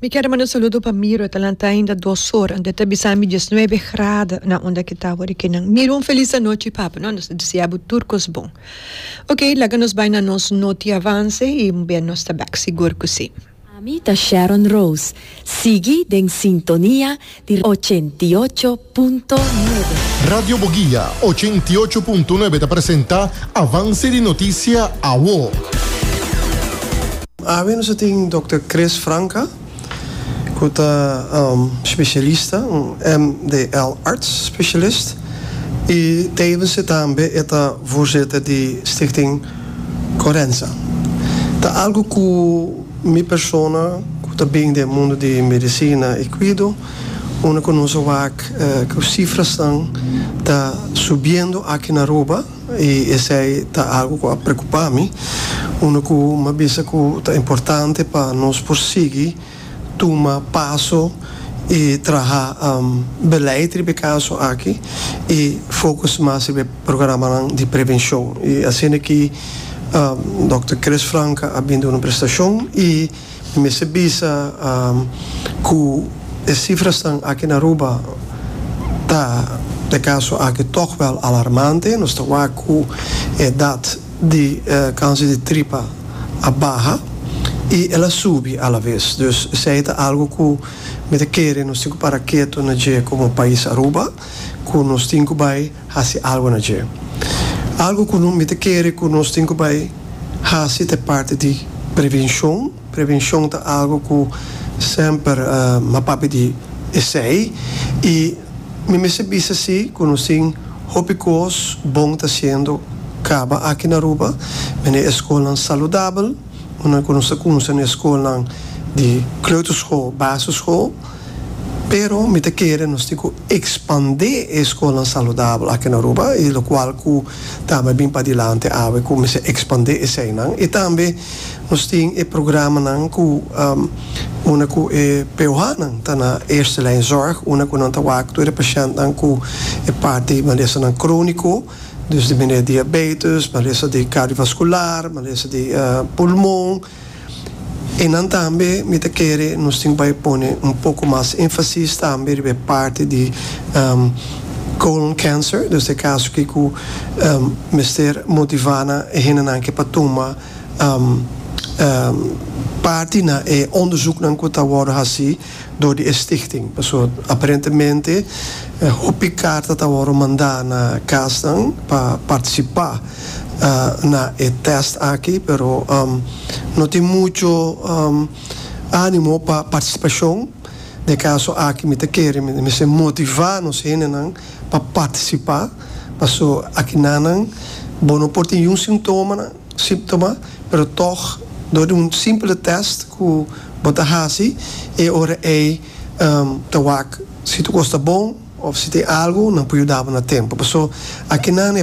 Mi kier a manda un saludo pa Miro e ta lanta ainda dos ora anto e ta bisa mi diesnuebe grada na unda ki ta awo di kinan Miro un felis anochi papa no nos ta desia bo tur kos bon ok laga nos bai na nos noti avance y mbe nos ta bek sigur cu si. Ami ta Sharon Rose. Sigui den sintonia di ochenta i ocho punto nuebe. Radio Boguia ochenta i ocho punto nuebe ta presenta Avance di Noticia Awo. Awe nos a tin Dòkter Chris Franca ku ta spesialista, un MDL arts specialist, i tevens e tambe e ta voorzitter di Stichting Corenza. Ta algu ku. Mi persona ku ta bin den mundu di medisina i kuido, unda ku nos a wak ku sifrasnan ta subiendo aki na Aruba i esei ta algu ku a preokupa mi, unda ku mi a bisa ku ta importante pa nos por sigui tuma paso i traha beleid riba e kaso aki i fokus mas riba e programanan di prevenshon i asina ki Dòkter Chris Franca a bin duna un prestashon i mi mester bisa ku e sifrasnan aki na Aruba ta, pa e kaso aki, tòg wèl alarmante. Nos ta wak ku e edat di kanser di tripa a baha i el a subi alabes. Dus esei ta algu ku mi ta kere nos tin ku para ketu na dje komo pais Aruba, ku nos tin ku bai. hasi algu na dje. Algu ku no mester kere ku nos tin ku bai hasi ta e parti di prevenshon. Prevenshon ta algu ku semper a papia di esei i mi mester bisa si ku nos tin hopi kos bon ta hasiendo kaba aki na Aruba. Mende e skolnan saludabel. Ora nan ku nos ta kumsa na e skolnan di kleuterschool, basisschool, pero mi ta kere nos tin ku ekspandé e skolnan saludabel aki na Aruba i lokual ku tambe a bin padilanti awe ku mester ekspandé eseinan i tambe nos tin e programanan ku una ku e POHnan ta na eerste lijn zorg una ku nan ta wak tur e pashèntnan ku e parti di malesanan króniko. Dus di mene diabetes, malesa di kardiovaskular, malesa di pulmon. I nan tambe mi ta kere nos tin bai pone un poko mas enfasis tambe riba e parti di colon cancer, dus ta e kaso ki ku mester motivá nan e hendenan ke pa tuma parti na e ondesuknan ku ta wòrdu hasí. dor di e stichting. Paso aparentemente hopi karta ta wòrdu mandá na kasnan pa partisipá na e tèst aki, pero no tin muchu ánimo pa partisipashon. Na e kaso aki mi ta kere mi mester motivá nos hendenan pa partisipá, paso aki nanan bo no por tin yu sintomanan. siptoma pero tog dor di un simpele test ku bo ta hasi e ora ei ta wak si tu kos ta bon of si tin algu nan por yuda bo na tempo paso akinan e.